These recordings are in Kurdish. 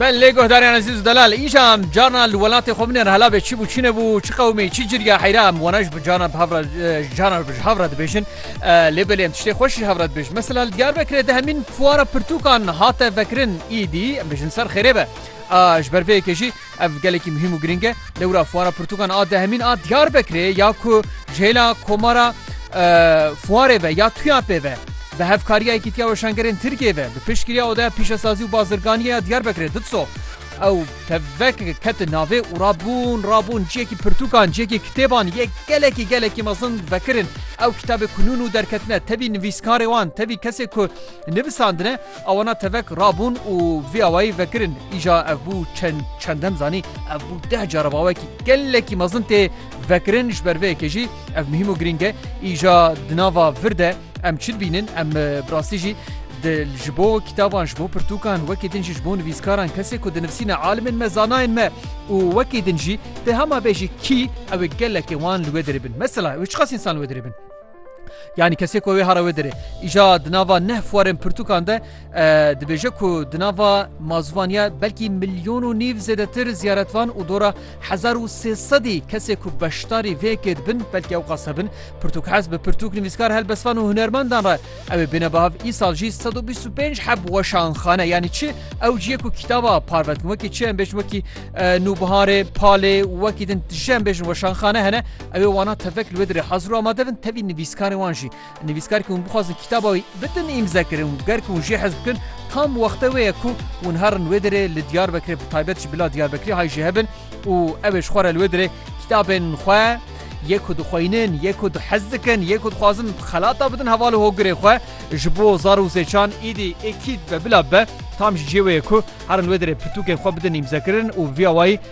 Ben lê guhdarên ezîz û delal îja em carna li welatê xwe binêr hela bê çi bû çi nebû çi qewmê çi cirya heyra em wana ji cana cana ji hevra dibêjin lê belê em tiştê xweş ji hevra dibêjin mesela li Diyarbekirê de hemîn fuwara pirtûkan hate vekirin îdî em bêjin ser xêrê be ji ber vê yekê jî Ev gelekî muhîm û girîng e. Dewra Fuara Pirtûkan a dehemîn a Diyarbekirê ya ku ji hêla Komara Fuarê ve ya TUYAP'ê ve bi hevkariya Yekîtiya Weşangerên Tirkiyê ve bi piştgiriya Odeya Pîşesazî û Bazirganiyê ya Diyarbekirê, DITSO, ew tevvekeke ketin navê û rabûn rabûn ciyekî pirtûkan, ciyekî kitêban yê gelekî gelekî mezin vekirin. Ew kitabê ku nû nû derketine tevî nivîskarê wan, tevî kesê ku nivisandine, Awana tevek rabûn û vê awayî vekirin. Îja ev bû çend çendem zanî ev bû deh cara bawekî gelekî mezin tê vekirin ji ber vê yekê jî ev muhîm û girîng e. Îja di nava vir de em çi dibînin em bi rastî jî di ji bo kitaban ji bo pirtûkan wekî din jî ji bo nivîskaran kesê ku dinivîsîne alimên me zanayên me û wekî din jî di hema bê jî kî ew ê gelekê wan li wê dirê bin. Mesela ew ê çiqas însan li wê dirê bin. Yanî kesê ku wê hara wê dirê. Îja di nava neh fuarên pirtûkan de dibêje ku di nava mazûvaniya belkî milyon û nîv zêdetir ziyaretvan û dora hezar û sê sedî kesê ku beşdarî vê yekê dibin belkî ew qas hebin pirtûk hez bi pirtûk nivîskar helbestvan û hunermendan re ew ê bêne bihav îsal jî sed û bîst û pênc heb weşanxane yanî çi ew ciyê ku kitaba parvetin wekî çi em bêjin wekî nûbiharê palê wekî din tije em bêjin weşanxane hene Ew ê wanan tevek li wê dirê hazir û amade bin tevî nivîskarên wan jî. Nivîskarkî hûn bixwazin kitaba wî bidin îmzekirin û ger ku hûn jê hez bikin tam wexte wê ye ku hûn herin wê dirê li Diyarbekirê bi taybet jî bila Diyarbekirî hay jê hebin û ew ê ji xwe re li wê dirê kitabên xwe yê ku dixweynin, yê ku dihez dikin, yê ku dixwazin xelata bidin heval û hogirê xwe ji bo zar û zêçan îdî êkîd be bila be tam jî cê wê ye ku herin wê dirê pirtûkên xwe bidin îmzekirin û bi vî awayî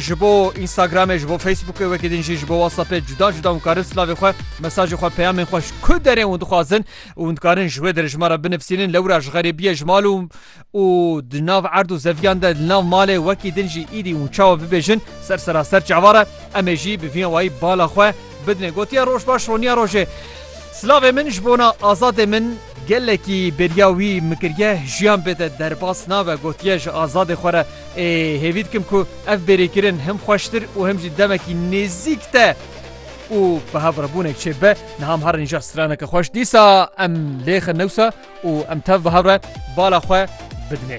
ji bo Instagramê ji bo Facebookê wekî din jî ji bo WhatsAppê cuda cuda hûn karin silavê xwe mesajê xwe peyamên xwe ji ku derê hûn dixwazin û hûn dikarin ji wê derê ji me re binivîsînin lewra ji xerêbiyê ji mal û û di nav erd û zeviyan de li nav malê wekî din jî îdî hûn çawa bibêjin ser seraser çavar e em ê jî bi vî wayî bala xwe bidinê gotiye roj baş roniya rojê Silavê min ji bona azadê min gelekî bêriya wî min kiriye jiyan bêde derbas nabe gotiye ji azadê xwe re Ê hêvî dikim ku ev bêrêkirin him xweştir û him jî demekî nêzîk te û bi hev re bûnek çê bibe. Niha em herin îja straneke xweş dîsa em lêxin newsa û em tev bi hev re bala xwe bidinê.